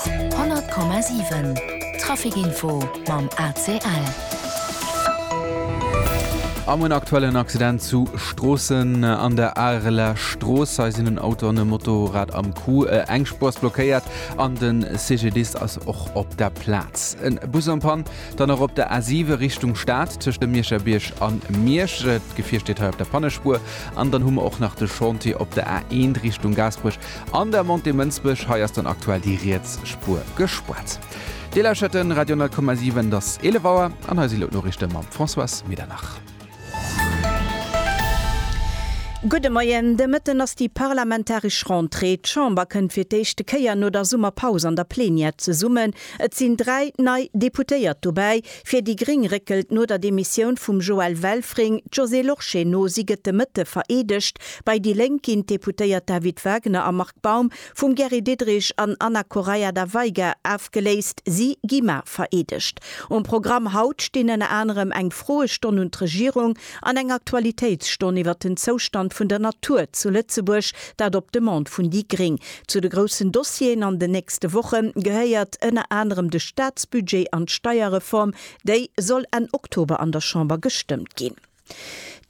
100,7 Traficinfo mam ACL. Am en aktuellen Accident zu Stroossen an der Areler Strooss. Hei sinn en Auto an e Motorrad am Coup. Äh, eng Spuer ass blockéiert an de CGDist ass och op der Plaz. En Bus am Pann, dann och op der A7 Richtung Stad tëscht dem Mierscherbierg an Miersch. D'Gefier steet hei op der Pannespuer. An dann hu mer och nach de Chantier op der A1 Richtung Gaasperech. An der Montée Mënsbech, hei ass dann aktuell déi riets Spuer gespaart. Dir lauschert den Radio 10,7, et ass 11 Auer an hei si lo d'Noriichte mam Françoise Medernach. Gudde Moien, de Mëtten ass déi parlamentaresch Rentrée. D'Chamber kënnt fir d'éischte Kéier no der Summerpaus an der Plenière zesummen. Et sinn dräi nei Deputéiert dobäi. Fir déi gréng réckelt no der Demissioun vum Joël Welfring d'Josée Lorsché no. Si gëtt de Mëtte vereedegt. Bei déi Lénk ginn d'Deputéiert David Wagner a Marc Baum vum Gary Diderich an Ana Correia da Veiga afgeléist. Si gi mar vereedegt. Um Programm haut stinn ënner anerem eng Froestonn un d'Regierung An eng Aktualitéitsstonn iwwer den Zoustand vun der Natur zu Lëtzebuerg, dat op Demande vun déi gréng. Zu de groussen Dossieren an den nächste Woche gehéiert ënner anerem de Staatsbudget an d'Steierreform, déi soll Enn Oktober an der Chamber gestëmmt ginn.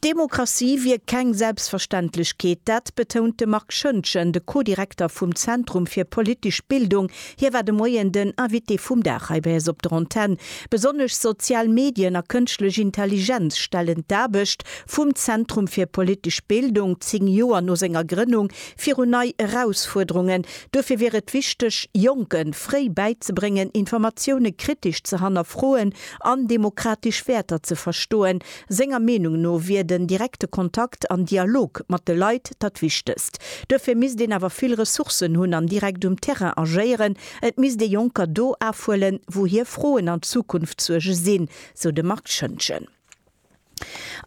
D'Demokratie wier keng Selbstverständlechkeet, dat betount de Marc Schöntgen, de Co-Direkter vum Zentrum fir politesch Bildung, Hie war de Moien den Invité vum Dag hei bei eis op der Antenn. Besonnesch sozial Medien a kënschtlech Intelligenz stellen d'Aarbecht vum Zentrum fir politesch Bildung, zéng Joer no senger Grënnung, virun nei Erausfuerderungen. Duerfir wier et wichteg, Jonke fréi bäizebréngen, Informatioune kritesch ze hannerfroen an demokratesch Wäerter ze verstoen. Senger Meenung no wier den direkte Kontakt an Dialog mat de Leit dat Wichtegst. Duerfir misst een awer vill Ressourcen hunn an direkt um Terrain agéieren. Et misst ee Jonker do afhuelen, wou hir Froen an Zukunftssuerge sinn, sou de Marc Schoentgen.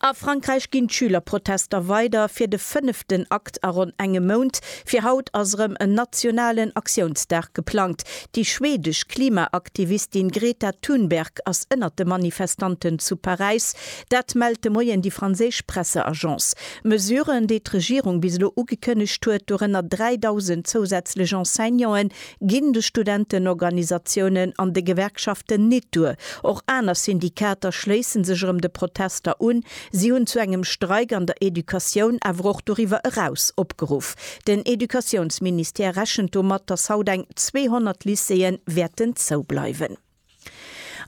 A Frankräich ginn d'Schülerprotester weider, fir de fënneften Akt a ronn engem Mount. Fir haut ass erëm en nationalen Aktiounsdag geplangt. Déi schwedesch Klimaaktivistin Greta Thunberg ass ënnert de Manifestanten zu Paräis. Dat mellt de Moien déi franséisch Presseagence. Mesuren, déi d'Regierung bis elo ugekënnegt huet, dorënner 3.000 zousätzlech Enseignanten, ginn de Studentenorganisatiounen an de Gewerkschaften nit duer. Och aner Syndikater schléisse sech erëm de Protester un. Si hunn zu engem Streik an der Educatioun, awer och doriwwer eraus opgeruff. Den Educatiounsministère rechent domat, datt haut eng 200 Lycéeë wäerten zoubleiwen.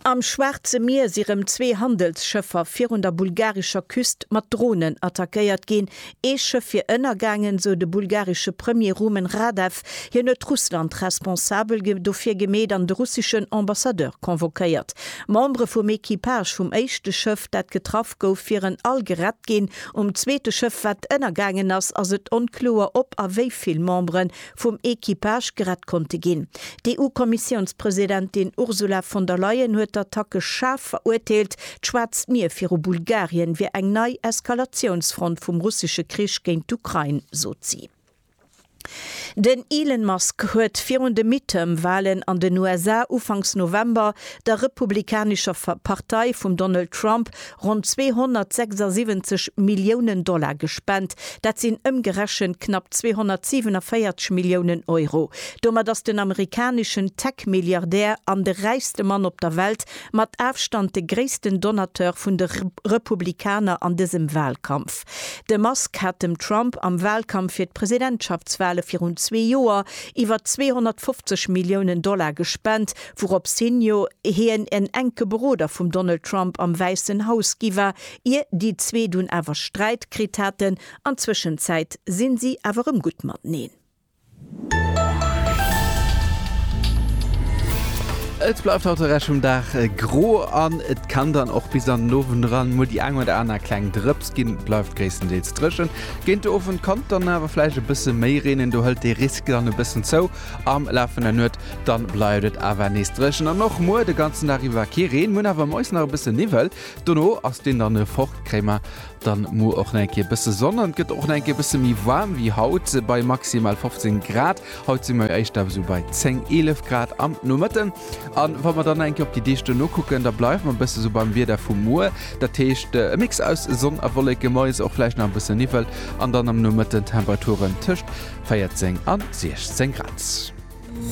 Am Schwaarze Mier si rëm zwee Handelsschëffer virun der bulgarescher Küst mat Dronen attackéiert ginn. Ee Schëff wier ënnergaangen, sou de bulgaresche Premier Rumen Radev. Hien huet Russland responsabel dofir gemeet an de russeschen Ambassadeur convoquéiert. Membere vum Equipage vum éischte Schëff, dat getraff Schëff gouf virun all gerett ginn. Um zweete Schëff, wat ënnergaangen ass, ass et onkloer, ob a wéi vill Membere vum Equipage gerett konnte ginn. D'EU-Kommissiounspresidentin Ursula von der Leyen huet d'Attacke schaarf verurteelt. D'Schwaarzt Mier viru Bulgarien wier eng nei Eskalatiounsfront vum russesche Krich géint d'Ukrain, sot si. Den Elon Musk huet virun de Midterm-Walen an den USA ufanks November der republikanescher Partei vum Donald Trump ronn 276 Milliounen Dollar gespent. Dat sinn ëmgerechent knapp 247 Milliounen Euro. Domat ass den amerikaneschen Tech-Milliardär an de räichste Mann op der Welt mat Afstand de gréissten Donateur vun de Republikaner an dësem Walkampf. De Musk hat dem Trump am Wahlkampf fir d'Presidentschaftswahle virun zwee Joer iwwer 250 Milliounen Dollar gespent, wourops hin jo hien en enke Beroder vum Donald Trump am Wäissen Haus gi war, ier déi zwee dunn awer Sträit kritt haten. An Zwëschenzäit si si awer erëm gutt mateneen. Et bleift haut de Rescht vum Dag gro an et kann dann och bis an den Owend eran mol déi eng oder aner kleng Drëps ginn. Et bleift gréisstendeels dréchen. Géint de Owend kann et dann awer vläicht e bësse méi reenen, do hëlt de Risk dann e bëssen zou. Am Laf vun der Nuet dann bleift et awer nees dréchen an och muer de ganzen Dag iwwer kee Reen. Mir hunn awer moies nach e bësse Niwwel, dono ass deen dann fort, kréie mer Dann muer och nach eng Kéier bësse Sonn an et gëtt och nach eng Kéier bësse méi waarm wéi haut bei maximal 15 Grad. Haut si mer éischter esou bei 10, 11 Grad am Nomëtten. A wa mer dann nach eng Kéier op déi Deeg duerno kucken, da bleiwe mer bësse esou beim Wieder vu muer. Dat heescht e Mix aus Sonn a Wolleke, mais och vläicht nach e bësse Niwwel an dann am Nomëtten Temperaturen tëscht 14 a 16 Grad.